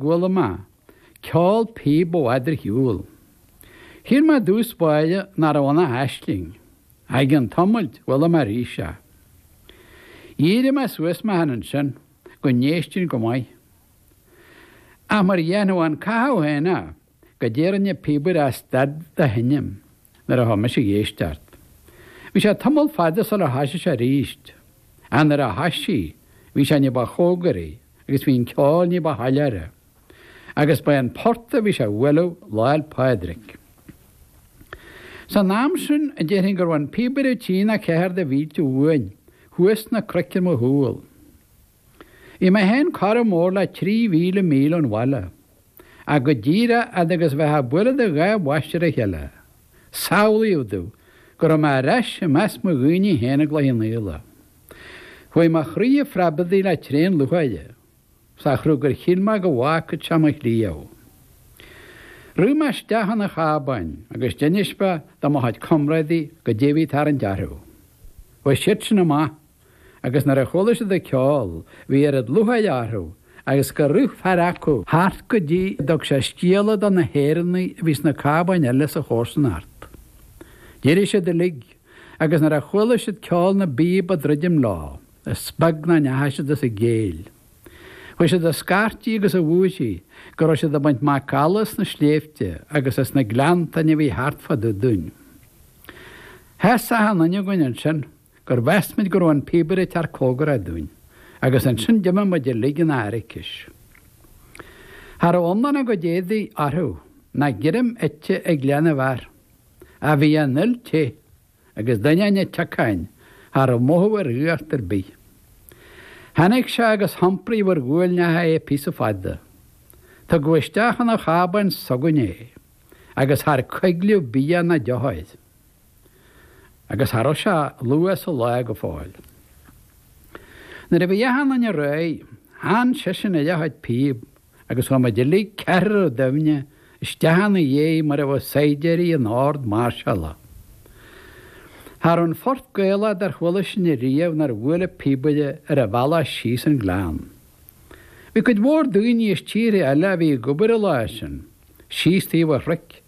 Guala Ma, ceol píob ó Adar Hiul. Chíor Ma dtús báire ná raibh ana aisling, aigh an t-iomailt Guala Ma arís a. Dhírigh Ma suas Ma than ansin go n-éistfinn go maith. Ach mar dheimhniú an caitheamh féin a. goidé a rinn an píobaire ach stad de sheinm nuair a thoisigh mise ag éisteacht. Bhí sé tamall fada sular thoisigh sé aríst, ach nuair a thoisigh, bhí sé ní ba chomhgaraí agus bhí an ceol ní ba shoiléire. Agus ba é an port a bhí sé a bhualadh Lá'l Pádraig. San am sin, déarfainn go raibh an píobaire trí nó ceathair de mhílte uainn, thuas sna cnoic ar mo chúl. Bhí mé féin corradh mór le 3,000 míle ón bhaile, ach go díreach fhad agus a bheifeá ag bualadh do dhá bhois ar a chéile, samhlaíodh domh go raibh mé ar ais i measc mo dhaoine féin i gCloich Cheann Fhaola. Chuaigh mo chroí a phreabadaigh le tréan lúcháire, sa chruth gur shíl mé go bhfágfad sé mo chliabh. Rith mé isteach chun an chábáin agus d'inis mé do mo chuid comrádaí goidé a bhí ag tarraingt orthu. Bhuail siadsan amach. agus nuair a chuala siad an ceol bhí oiread lúcháire orthu agus gur rith fear acu thart go dtí go dtug sé scéala do na hÉireannaigh a bhí sna cábáin eile sa chomharsanacht. D'éirigh siad uilig agus nuair a chuala siad ceol na bpíob ag druidim leo is beag nár ndeachaigh siad as a gcéill. Chuaigh siad a scairtigh agus a bhúirthigh go raibh siad ag baint macalla as na sléibhte agus as na gleanntáin a bhí thart fá dtaobh dúinn. Sheas achan duine againn ansin. gur mheas muid go raibh an píobaire ag teacht comhgarach dúinn, agus ansin d'imigh muid uilig ina airicis. Cha raibh iomlán a gcuid éadaí orthu ná greim ite ag leath na bhfear ach bhí an fhuil te, agus d'ainneoin an tsiocáin cha raibh mothú ar fhuacht ar bith. Tháinig sé agus hiompraíodh ar ghuailneacha é píosa fada. Tugadh isteach chun an chábáin s'againne é, agus char coiglíodh bia ná deoch air. agus cha raibh sé luath sa lá go fóill. Nuair a bhí achan duine réidh, theann seisean ar a chuid píob agus chuaigh muid uilig ceathrar ar doimhne isteach ina dhiaidh mar a bheadh saighdiúirí in ord mairseála. Cha raibh aon phort Gaelach dár chuala sinne riamh nár bhuail an píobaire ar a bhealach síos an gleann. Bhí cuid mhór daoine as tíortha eile a bhí ag obair an lá sin. síos taobh an chnoic,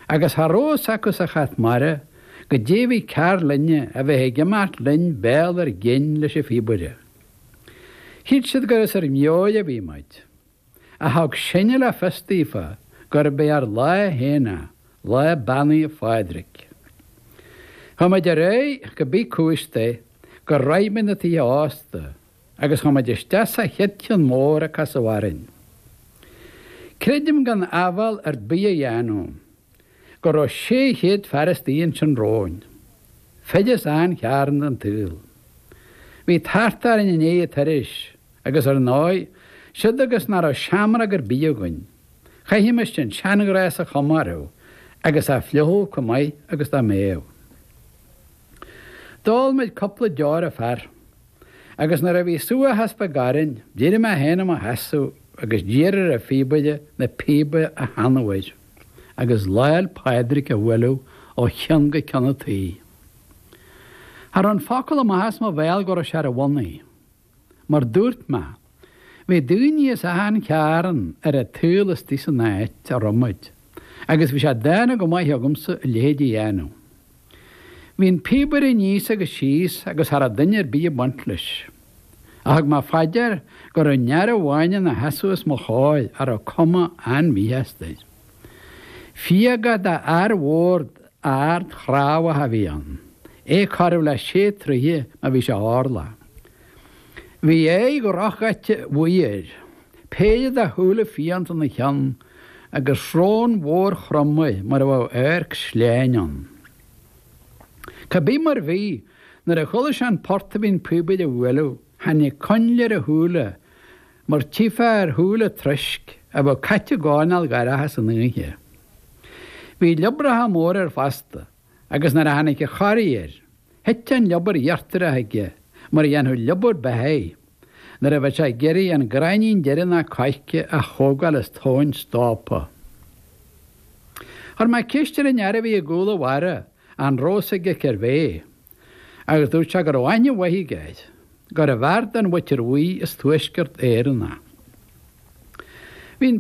agus cha raibh a fhios acu sa chat mara, goidé a bhí cearr linne a bheith ag imeacht linn béal ár gcinn leis an phíobaire. Shíl siad gur as ár meabhair a bhí muid, ach thug sinne le fios daofa gurbh é ár lá féin é, lá Beannaithe Phádraig. Chuaigh muid ar aghaidh cibé cúis é gur shroich muid na tithe ósta, Agus chuaigh muid isteach sa chéad cheann mór a casadh orainn. Creidim gan áibhéil ar bith a dhéanamh go raibh 600 fear istigh ansin romhainn. Fir as achan chearn den tsaol. Bhí tart orainn i ndiaidh an turais agus ar ndóigh, siúd agus nach raibh seamróg ar bith againn, chaithfimis an seanghnás a chomóradh agus a fhliuchadh chomh maith agus dá mbeadh. D'ól muid cupla deor an fear. Agus nuair a bhí subhachas beag orainn, d'éirigh mé féin i mo sheasamh agus d'iarr ar an phíobaire na píoba a theannadh air, agus Lá'l Pádraig a bhualadh ó chionn go cionn an tí. Cha raibh an focal amach as mo bhéal go raibh sé ar a bhonnaí, mar dúirt mé. Bhí daoine as achan chearn ar an tsaol istigh san áit a raibh muid, agus bhí sé dána go maith agamsa a leithéid a dhéanamh. Bhí an píobaire aníos agus síos agus cha raibh duine ar bith ag baint leis. Ach thug mé fá dear go raibh aon fhear amháin ina sheasamh os mo chomhair a raibh cuma an-mhíshásta air. Fiagaí d'fhear mhór ard chnámhach a bhí ann, é corradh le sé troithe má bhí sé orlach. Bhí aghaidh dhrochdhaite bhuí air, péire de shúile fiánta ina cheann agus srón mhór throm air mar a bheadh adharc sleáin ann. Cá bith mar bhí, nuair a chuala sé an port a bhí an píobaire a bhualadh, tháinig coinnle ar a shúile mar tchífeá ar shúile troisc a bheadh caite i gcoirnéal dhorcha san oíche. Bhí liobracha móra air fosta. agus nuair a tháinig an chorraí air, thit an liobar íochtarach aige mar a dhéanfadh liobar beithigh nuair a bheadh sé ag iarraidh an gráinnín deireanach coirce a thógáil as tóin stópa. Chuir mé ceist ar an fhear a bhí i gcúl an bharra an raibh 'fhios aige cérbh é, agus dúirt sé go raibh aithne mhaith aige air, gurbh fhear den mhuintir bhuí as Tuaisceart Éireann a bhí ann.